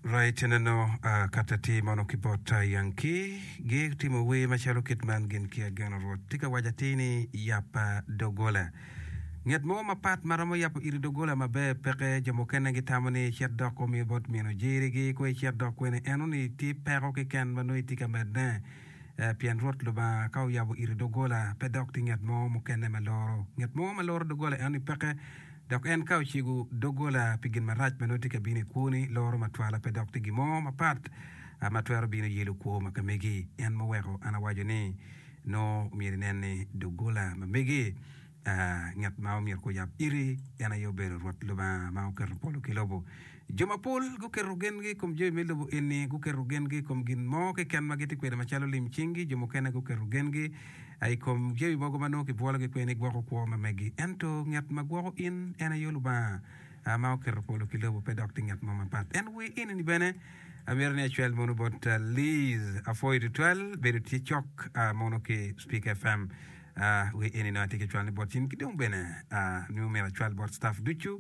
Rai tineno a kat atir mono ki bot a Yanki gi timo wer macalo kit man gin ki ageno Rwot tye ka waco atir ni yap a dogola. Nget mo mapat ma romo yabo iri dogola maber peke. Jo mukene gitamo ni icit dok omi bot mino jerigi kong icit dok kwene eno ni tye peko keken ma nongo itye ka medne eh, pien Rwot Lubanga ka oyabo iri dogola pe dok tye nget mo mukene ma loro. Nget mo ma loro dogola eno ni peke. Dok en ka ocego doggola pi gin marac ma nongo tye ka bino i kwoni, loro matwala pe dok tye gin mo mapat ma twero bino yelo kwo ma ka megi. En ma oweko an awaco ni nongo myero inen ni doggola ma megi, ngat ma omyero kuyab iri en aye obedo Rwot Lubanga ma oketo polo ki lobo. Jo mapol guketo gengi i kom jami me lobo eni, guketo gengi i kom gin mo keken ma gitye kwede macalo lim cinggi. Jo mukene guketo gengi i kom jami mogo ma nongo kibwologi kwede ni gwoko kwo ma megi. Ento ngat ma gwoko in en aye Lubanga ma oketo polo ki lobo, pe dok tye ngat mo mapat. En wi enini bene amito ni acwal mono bot Liz. Apwoyo tutwal bedo tye cok mono ki Speaker FM. Wi enini atye ka cwalone bot in ki dong bene nongo myero acwal bot staff ducu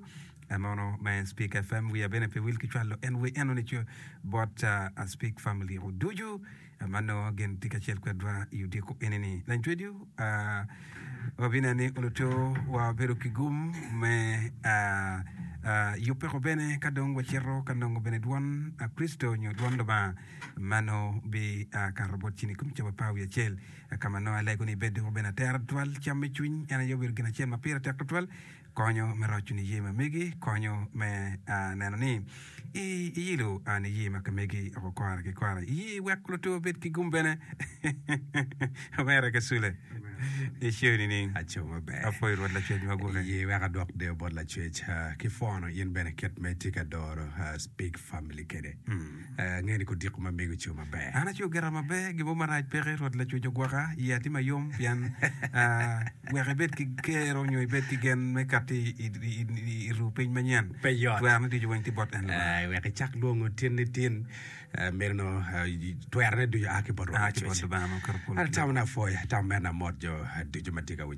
Anono ma en Speak FM wiya bene pe wil ki cwalo en wer eno ni co bot a Speak family o ducu ma nongo gin tye kacel kwedwa i odiko eni ni. Lancwediu a wabinen ni oluto wa wabedo ki gum me a a yubbe ko bene ka dong wacito ka nongo bene dwon a Kricito nyo dwon Lubanga ma nongo bi a kato bot cen i kom cawa pa wi acel ka ma nongo alego ni bed doko bene atera tutwal cam me cwiny en aye obedo gin acel ma pire tek tutwal Konyo me roco niye ma megi konyo me neno ni iyilo niye ma ka megi oko kora ki kora. Iye iweko lutwe obed ki gum bene. Omera ki sule i show nining? Aco maber. Apoyo Rwot Lacwec ma guke. Iye iweko adwok deyo bot Lacwec ki pwono in bene kit ma itye ka doro Speak Family kede. Angeyo ni kodiko ma mego co maber. An acweyo gira maber, gin mo marac peke. Rwot Lacwec ogwoka, iya tye ma yom pien wek ibed ki gero nyo ibed ki gen me kati i ru piny manyen. Pe yot. Twer me ducu weng tye bot en Lubanga. I wek icak lwongo tin ni tin, meno twer ne ducu a ki bot Rwot Lacwec. Atamo napwoya, atamo mer namot jo ducu ma tye ka winyo.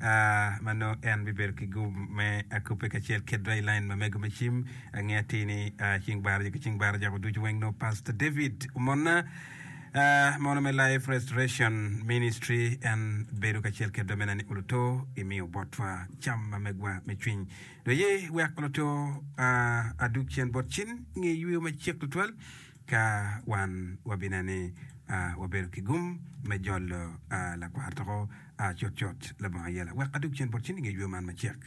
ma nongo en bibedo ki gum me akupe kacel ki dry line ma mego me cim. Ange atir ni cing baraja ki cing baraja ko ducu weng nongo Pastor David omonna mono me Life Restoration Ministry en bedo kacel kedwa mena ni uluto imiyo botwa cam ma megwa me cwiny. Do ye wek uluto adug cen bot cin nge yweyo macek tutwal ka wan wabinene wabedo ki gum me jolo lakwar toko A cutcut, labongo ayela, wek adog cen bot cen i nge ywe man macek.